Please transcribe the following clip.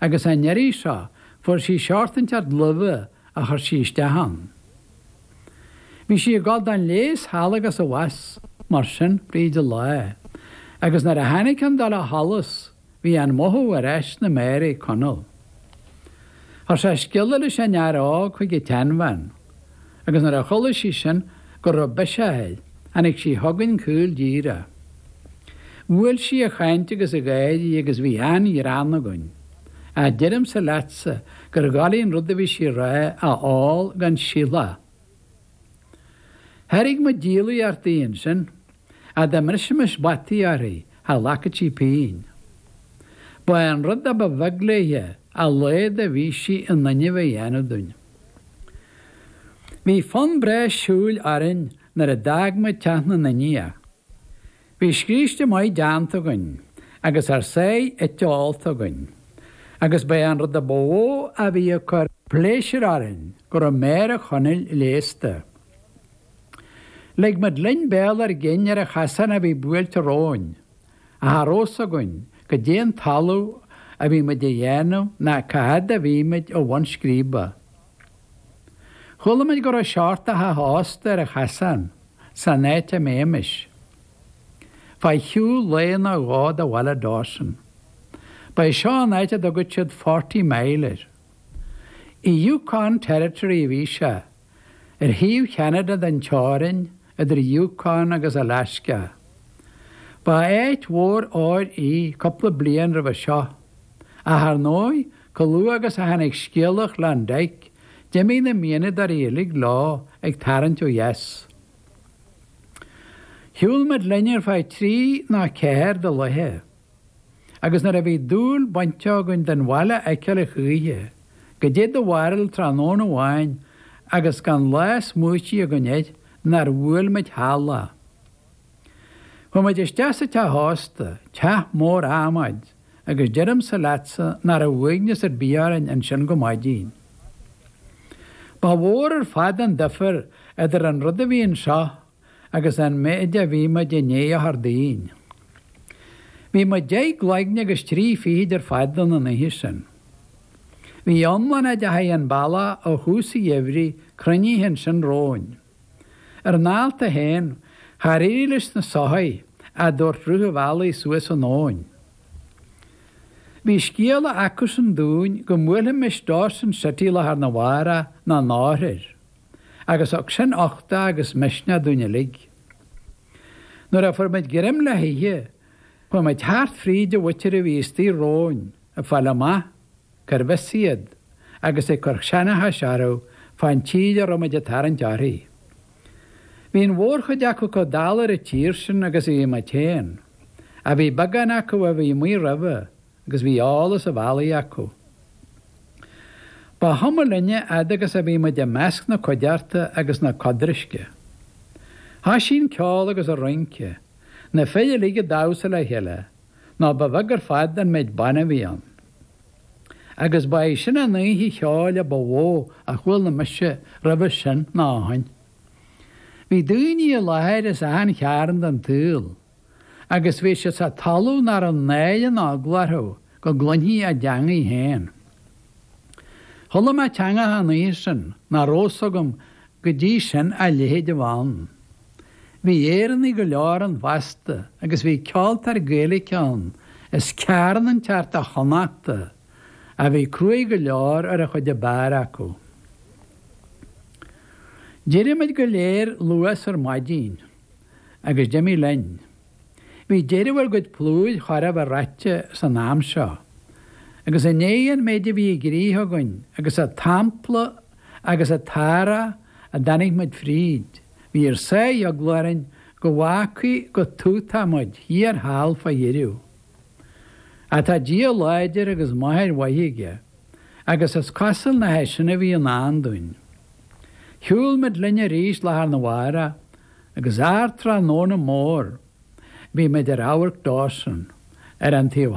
agus an iarraidh seo fuair sí seort inteacht luibhe a chuir sí isteach ann. Bhí sí ag dul don leigheas thall agus abhus mar sin fríd an lá, agus nuair a tháinig an dul ó sholas bhí an mothú ar ais sna méara ag Conall. Chuir sé scéala leis an fhear óg chuig an tseanbhean. agus nuair a chuala sí sin go raibh biseach air, tháinig sí chugainn caol díreach. Bhuail sí a chaint agus a gáirí agus bhí an-ghreann againn. Ach deirimse leatsa gur dhoiligh an rud a bhí sí a rá a fháil gan siúlach. Thairg muid díolaíocht di ansin, ach dá mbrisimis bataí uirthi, cha ghlacfadh sí pingin. Ba é an rud a ba bheag léithe a laghad a bhí sí in innimh a dhéanamh dúinn. Bhí fonn breá siúil orainn nuair a d'fhág muid teach na nIndiach. Bhí scríste maith déanta againn agus ár sáith ite is ólta againn, agus ba é an rud a ba mhó a bhí ag cur pléisiúir orainn go raibh méara Chonaill leigheasta. Lig muid linn béal ár gcinn ar an chasán a bhí buailte romhainn, Ach cha raibh a fhios againn goidé an talamh a bhí muid a dhéanamh ná cá fhad a bhí muid ó bhun scríbe. Chuala muid go raibh seort de theach ósta ar an chasán san áit a mbeimis fá shiúl lae nó dhó de bhaile Dawson. Ba é seo an áit a dtugadh siad Forty Mile air. I Yukon Territory a bhí sé. ar thaobh Cheanada den teorainn idir Yukon agus Alasca. Ba áit mhór óir í cúpla bliain roimhe seo, ach ar ndóigh, chomh luath agus a tháinig scéala Klondike, d'imigh na mianadóirí uilig leo ag tarraingt ó dheas. Shiúil muid linn ar feadh trí ná ceathair de laethe. agus nuair a bhí dúil bainte againn den bhaile a fheiceáil a choíche, goidé do bharúil tráthnóna amháin agus gan lá smaoitithe againn air nár bhuail muid thall é. Chuaigh muid isteach sa teach ósta, teach mór adhmaid, agus deirimse leatsa nach raibh uaigneas ar bith orainn ansin go maidin. Ba mhór ar fad an duifear idir an rud a bhí anseo agus an méid a bhí muid i ndiaidh a chur dínn. Bhí muid deich gcloigne agus trí fichid ar fad ann an oíche sin. Bhí iomlán a dteachaidh an bealach ó thús an gheimhridh cruinnithe ansin romhainn. Ar ár ndálta féin, char éirigh leis na soithigh a dtabhairt rith an bhealaigh suas an abhainn. Bhí scéala acusan dúinn go mbuailfimis Dawson City lá arna mhárach nó an oirthear. agus thug sin uchtach agus misneach dúinn uilig. Nuair a fuair muid greim le hithe, chuaigh muid thart fríd an mhuintir a bhí istigh romhainn ag fáil amach cérbh as iad agus ag cur seanchais orthu fán tír a raibh muid ag tarraingt uirthi. Bhí an mhórchuid acu comh dall ar an tír sin agus a bhí muid féin, ach bhí beagán acu a bhí amuigh roimhe, agus bhí eolas an bhealaigh acu. Ba chuma linne fhad agus a bhí muid i measc na cuideachta agus na codraisce. Thoisigh an ceol agus an rince, na fir uilig ag damhsa le chéile, nó ba bheag ar fad an méid ban a bhí ann. Agus ba í sin an oíche cheoil a ba mhó a chuala mise roimhe sin ná ó shin. Bhí daoine i láthair as achan chearn den tsaol. agus bhí siad sa talamh nach raibh náire ná eagla orthu go gcluinfí a dteangaidh féin. Chuala mé teangacha an oíche sin nach raibh a fhios agam go dtí sin a leithéid a bheith ann. Bhí Éireannaigh go leor ann fosta agus bhí ceoltóir Gaeilge ann as cearn inteacht de Chonnachta a bhí cruaidh go leor ar an chuid ab fhearr acu. D'éirigh muid go léir luath 's ar maidin. agus d'imigh linn. Bhí deireadh ár gcuid plúir chóir a bheith reaite san am seo, agus i ndiaidh an méid a bhí i gcrích againn agus an t-ampla agus an t-anró a dtáinig muid fríd, bhí ár sáith eagla orainn go bhfágfaí go tútach muid thiar thall fá dheireadh. Ach tá Dia láidir agus máthair mhaith aige. agus is cosúil nach é sin a bhí i ndán dúinn. Shiúil muid linn arís lá arna mhárach agus ardtráthnóna mór bhí muid ar amharc Dawson ar an taobh